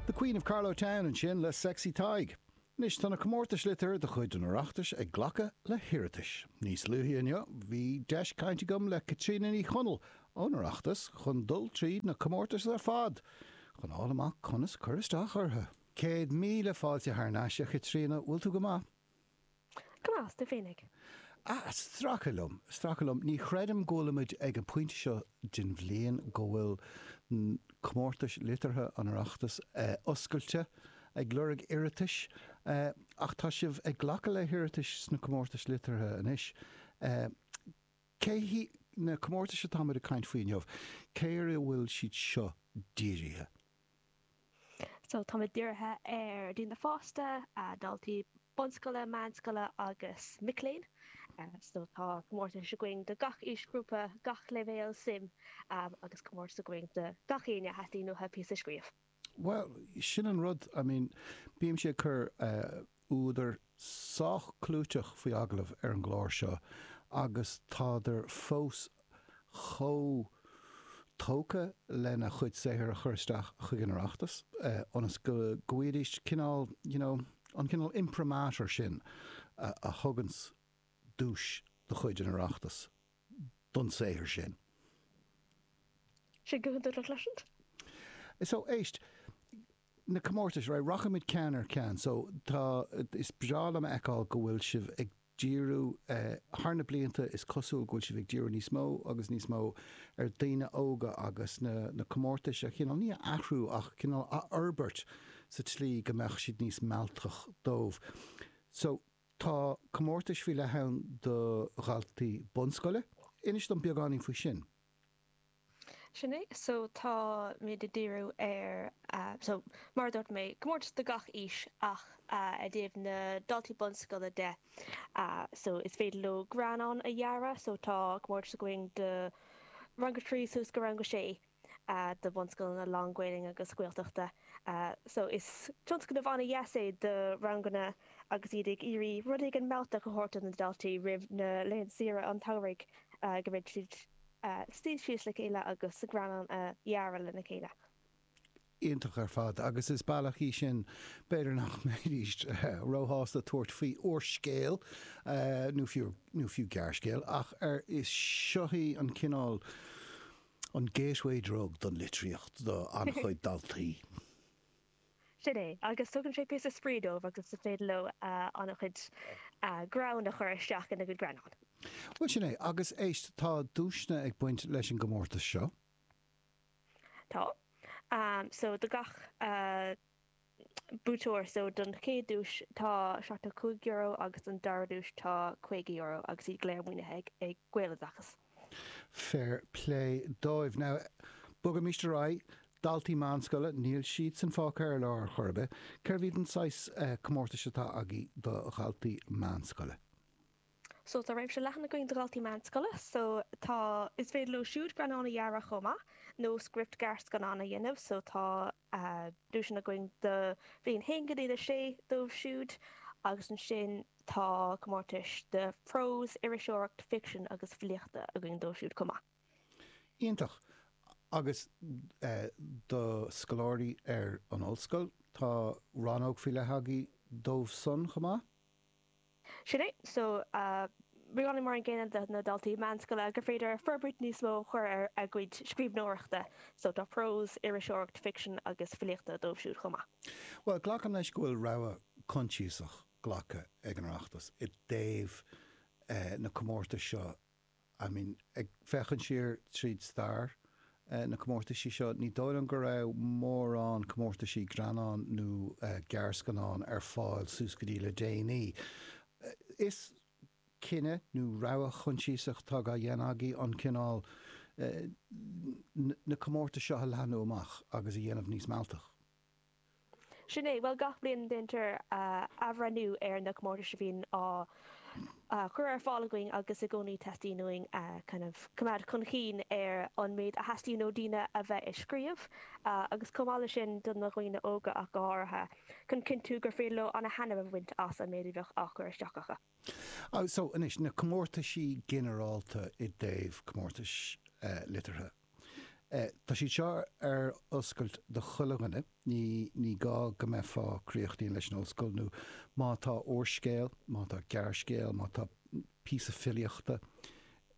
The Queen of Carlow Town ansin le Sexy Tadhg. Anois tá na comórtais liteartha de chuid an Oireachtais ag glacadh le hiarratais. Níos luaithe inniu bhí deis cainte agam le Caitríona Ní Chonaill ón Oireachtas chun dul tríd na comórtais ar fad chun fáil amach conas cur isteach orthu. Céad míle fáilte thar n-ais, a Chaitríona, bhfuil tú go maith? Go deas, tú féinig. Ah, ag stracadh liom, ag stracadh liom, ní chreidim go bhfuilimid ag an pointe seo den bhliain go bhfuil comórtais liteartha an Oireachtais oscailte ag lorg iarratais, ach tá sibh ag glacadh le hiarratais sna comórtais liteartha anois. Cé hiad na comórtais atá muid ag caint faoi inniu? Cé ar a bhfuil siad seo dírithe? So tá muid dírithe ar dhaoine fásta, daltaí bunscoile, meánscoile agus mic léinn. So tá comórtais againn do gach aoisghrúpa, gach leibhéal suim agus comórtas againn do gach éinne a dteastaíonn uathu píosa a scríobh. Bhuel sin an rud, I mean bímse ag cur eh, údair sách clúiteach faoi agallamh ar an gclár seo agus tádar fós chomh tógtha lena gcuid saothair a chur isteach chuig an Oireachtas ionas go bhfaighidís cineál, you know, an cineál imprimatur sin a thuganns duais de chuid an Oireachtais don saothar sin. Is é go húdarach leis an. So, éist. na comórtais, right, rachaimid ceann ar cheann. So tá, is breá liom a fheiceáil go bhfuil sibh ag díriú, thar na blianta is cosúil go bhfuil sibh ag díriú níos mó agus níos mó ar dhaoine óga agus na, na comórtais a chineál, ní a athrú ach cineál a fhorbairt sa tslí go mbeadh siad níos mealltaí dóibh. So tá comórtais faoi leith ann do dhaltaí bunscoile. Inis dom beagáinín faoi sin. Sin é, so táimid ag díriú ar so mar a dúirt mé, comórtas do gach aois ach i dtaobh na daltaí bunscoile de so is féidir leo greannán a dhearadh so tá comórtas againn do rang a trí suas go rang a sé do bhunscoileanna lán-Ghaelainn agus Gaeltachta so is tionscnamh an-dheas é do ranganna agus iad ag iarraidh rud éigin mealltach a thabhairt do na daltaí roimh na laethanta saoire an tsamhraidh go mbeidh siad ag suí síos le chéile agus an greannán a dhearadh lena chéile. Iontach ar fad agus is bealach é sin b'fhéidir nach mbeidís róshásta tabhairt faoi úrscéal nó fiú nó fiú gearrscéal ach arís seo é an cineál an gateway drug don litríocht do an-chuid daltaí. Sin é, agus tugann sé píosa spraoi dóibh agus is féidir leo ana-chuid greann a chur isteach ina gcuid greannán. Bhuel, sin é, agus éist, tá duaiseanna ag baint leis an gcomórtas seo. Tá. So, do gach buaiteoir, so, don chéad duais tá €75 agus don dara duais tá €50 agus iad go léir maoinithe ag Gaeloideachas. Fair plé dóibh. Now, bogaimis ar aghaidh. Daltaí meánscoile, níl siadsan fágtha ar lár ar chor ar bith. Cé hiad na saghas comórtais atá agaí do dhaltaí meánscoile? So, tá réimse leathan againn do dhaltaí meánscoile. So, tá, is féidir leo siúd greannán a dhearadh chomh maith, nó script gearrscannáin a dhéanamh. So, tá. duaiseanna againn do bhliain 1 go dtí 6 dóibh siúd, agus ansin tá comórtas de prós, iriseoireacht, ficsean agus filíochta againn dóibh siúd chomh maith. Iontach! Agus do scoláirí ar an ollscoil, tá rannóg faoi leith agaí dóibh san chomh maith. Sin é. So, réimsí mar an gcéanna leis na daltaí meánscoile gur féidir forbairt níos mó a chur ar a gcuid scríbhneoireachta. So, tá prós, iriseoireacht, ficsean agus filíochta dóibh siúd chomh maith. Bhuel, glacaim leis go bhfuil rogha choinsiasach glactha ag an Oireachtas i dtaobh na comórtas seo. I mean, ag féachaint siar tríd stair na comórtaisí seo, ní dóigh liom go raibh mórán comórtaisí greannán nó gearrscannáin ar fáil suas go dtí le déanaí. An cinneadh nó rogha choinsiasach atá dhá dhéanamh agaí cineál na gcomórtas seo a leathnú amach agus a dhéanamh níos mealltach. Sin é, bhuel gach bliain déantar athbhreithniú ar na comórtais a bhíonn á gcur ar fáil againn agus i gcónaí teastaíonn uainn kind of coimeád chun chinn ar an méid a theastaíonn ó daoine a bheith ag scríobh agus chomh maith leis sin do na dhaoine óga ach áirithe chun cinntiú gur féidir leo ana-thaitneamh a bhaint as an méid a bheadh á chur isteach acu. So anois, na comórtaisí ginearálta i dtaobh comórtais liteartha. Tá siad seo ar oscailt do chuile dhuine, ní gá go mbeifeá críochnaithe leis an ollscoil nó má tá úrscéal, má tá gearrscéal, má tá píosa filíochta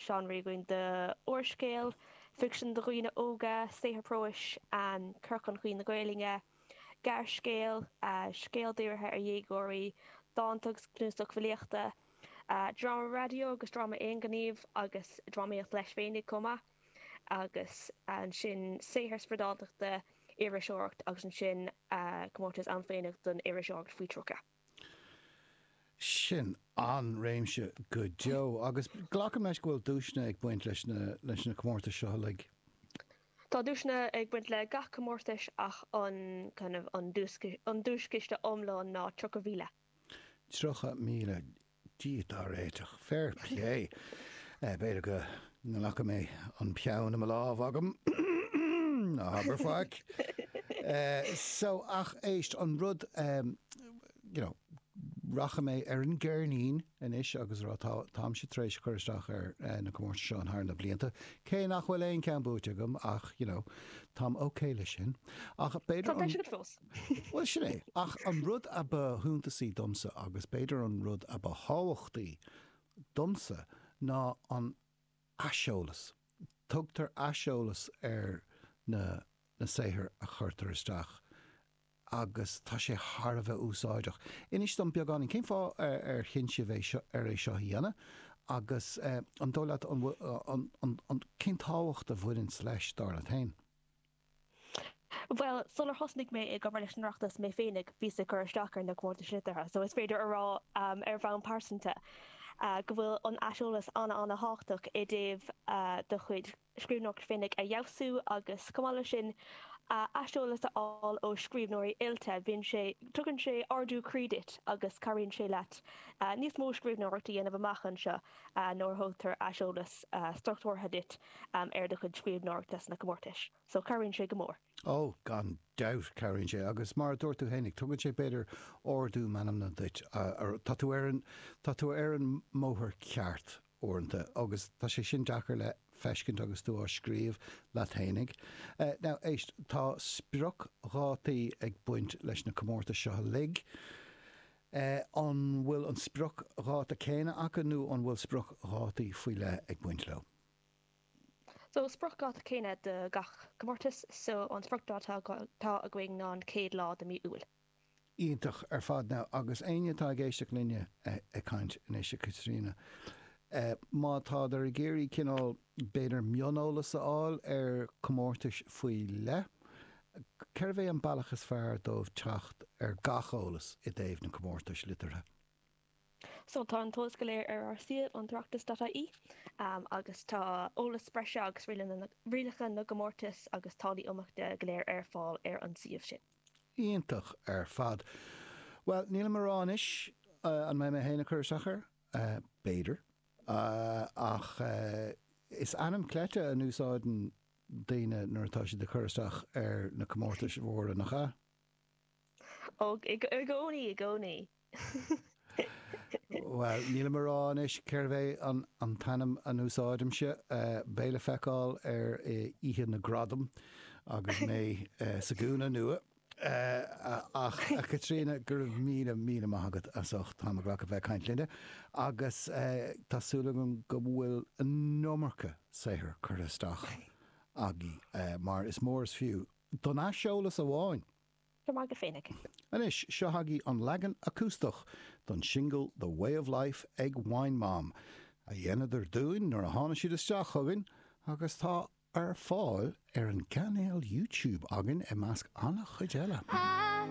seánra againn do úrscéal ficsean do dhaoine óga, saothar próis, cur chun cinn na Gaelainne, gearrscéal, scéal dírithe ar dhéagóirí, dánta agus cnuasach filíochta, dráma raidió agus dráma aonghnímh agus drámaíocht leis féinig chomh maith, agus ansin saothar spioradáltachta, iriseoireacht agus ansin comórtas an-shuimiúil don iriseoireacht faoi 30. Sin an-réimse go deo agus glacaim leis go bhfuil duaiseanna ag baint leis na comórtais seo uilig? Tá duaiseanna ag baint le gach comórtas ach an duaischiste iomlán ná 30,000. Tríocha míle. Dia dá réiteach. Fair play. B'fhéidir go nglacfaidh mé an peann i mo lámh agam. Ná habair faic. So, ach éist, an rud, you know, rachaidh mé ar an gceirnín anois agus a rá tá táimse tar éis cur isteach ar na comórtais seo thar na blianta, cé nach bhfuil aon cheann buaite agam ach, you know, táim ok leis sin. Ach b'fhéidir an. Tá breis agat fós. Bhuel, sin é. Ach an rud a ba shuntasaí domsa, agus b'fhéidir an rud a ba thábhachtaí domsa, ná an aiseolas. Tugtar aiseolas ar na na saothair a chuirtear isteach agus tá sé thar a bheith úsáideach. Inis dom beagáinín, cén fáth ar chinn sibh é seo, ar é seo a dhéanamh? Agus an dóigh leat, an bhfuil, an, an, an, cén tábhacht a bhaineann leis, dar leat féin? Bhuel, sular thosnaigh mé ag obair leis an Oireachtas mé féinig, bhíos ag cur isteach ar na comórtais liteartha so is féidir a rá ar bhonn pearsanta go bhfuil an aiseolas an-an-tábhachtach i dtaobh do chuid scríbhneoireacht féinig a fheabhsú agus chomh maith leis sin aiseolas a fháil ó scríbhneoirí oilte, bíonn sé, tugann sé ardú croí duit agus cabhraíonn sé leat níos mó scríbhneoireacht a dhéanamh amach anseo nuair a thugtar aiseolas struchtúrtha duit. um ar do chuid scríbhneoireachta sna comórtais so cabhraíonn sé go mór. Ó, gan dabht, cabhraíonn sé agus mar a dúirt tú fhéinig, tugann sé b'fhéidir ardú meanmna duit. Tá tú, tá tú ar an mbóthar ceart uaireanta agus tá sé sin deacair le feiscint agus tú á scríobh leat fhéinig. Now, éist, tá spriocdhátaí ag baint leis na comórtais seo uilig. An bhfuil an spriocdháta céanna acu nó an bhfuil spriocdhátaí faoi leith ag baint leo? So spriocdháta céanna do gach comórtas, so an spriocdháta atá againn ná an chéad lá de mí Iúil. Iontach ar fad now agus éinne atá ag éisteacht linne ag caint anois, a Chaitríona, má tádar ag iarraidh cineál b'fhéidir mioneolas a fháil ar chomórtais faoi leith, cérbh é an bealach is fearr dóibh teacht ar gach eolas i dtaobh na comórtais liteartha? So tá an t-eolas go léir ar ár suíomh an tOireachtas.ie agus tá eolas breise agus rialacha na gcomórtas agus táillí iontrála go léir ar fáil ar an suíomh sin. Iontach ar fad. Bhuel, nílim a rá anois an mbeidh mé féin ag cur isteach air, b'fhéidir, ach is ainm cleite a úsáideann daoine nuair atá siad ag cur isteach ar na comórtais mhóra, nach ea? Ó i gcónaí i gcónaí. Bhuel, nílim a rá anois cérbh é an t-ainm a n-úsáidimse. Beidh le feiceáil ar oíche na gradam agus mé sa gúna nua. Ach, a Chaitríona, go raibh míle, míle maith agat as ucht t'am a ghlacadh bheith ag caint linne agus tá súil agam go bhfuil an iomarca saothair curtha isteach agaibh mar is mór is fiú Don aiseolas amháin. Go maith go fainic! Anois, seo chugaibh an leagan acústach don singil The Way of Life ag Wine Mom, a dheineadar dúinn nuair a tháinig siad isteach chugainn, agus tá ar fáil ar an gcainéal YouTube againn, i measc an-chuid eile.